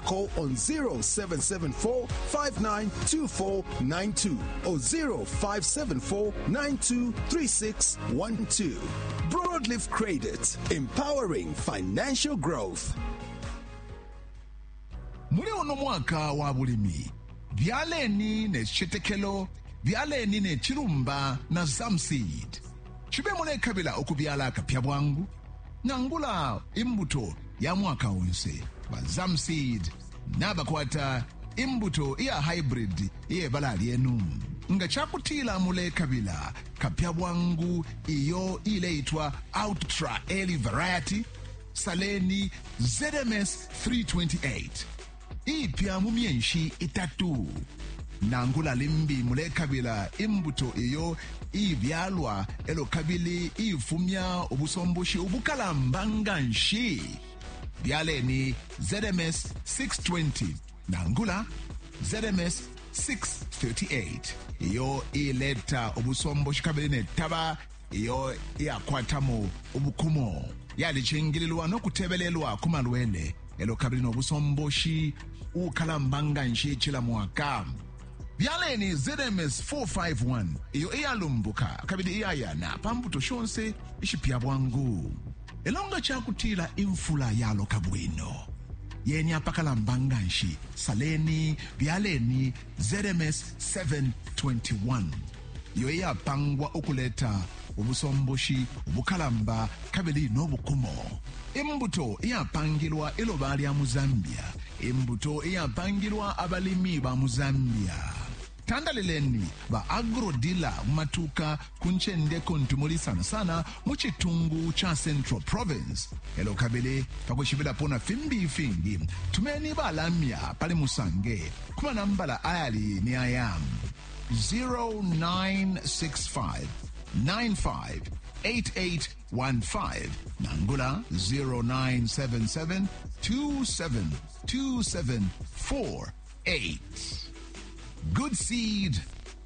Call on 0774 592492 or 0574 923612. Broadleaf Credit, empowering financial growth. muli uno mwaka wa bulimi byaleni ne citetekelo byaleni ne cilumba na zamseed cibe mulekabila ukubyala akapya bwangu nangula imbuto ya mwaka onse ba zamseed nabakwata imbuto iya hybrid iyebala lyenu nga cakutila mulekabila kapya bwangu iyo ileitwa outtra early variety saleni zms 328 iipya mu myenshi itatu. Nangula limbi mulekabila imbuto iyo iibyalwa elo kabili iifumya ubusomboshi ubukalamba nganshi, byaleni ZMS 620 nangula ZMS 638 iyo iileta ubusomboshi kabili ne taba iyo iyakwatamo ubukumo yalicingililwa no kutebelelwa ku malwele elo kabili no busomboshi ukalamba nga nshi cila mwaka byaleni zms 451 iyo iyalumbuka kabili iyayana pa mbuto shonse ishipya bwangu elo nga cakutila imfula yaloka bwino yeni apakalamba nga nshi saleni byaleni ZMS 721, iyo iyapangwa ukuleta ubusomboshi ubukalamba kabili no bukumo, imbuto iyapangilwa iloba lya mu Zambia, imbuto iyapangilwa abalimi ba mu Zambia. Tandalileni ba agro-dealer mu matuuka ku ncende kuntu muli sana sana mu citungu ca Central Province. E lyo kabili pa kwishibilapo na fimbi ifingi, tumeni balamya pali Musange ku manambala ayali ni aya 0965 958815 nangula 0977 272748. Good seed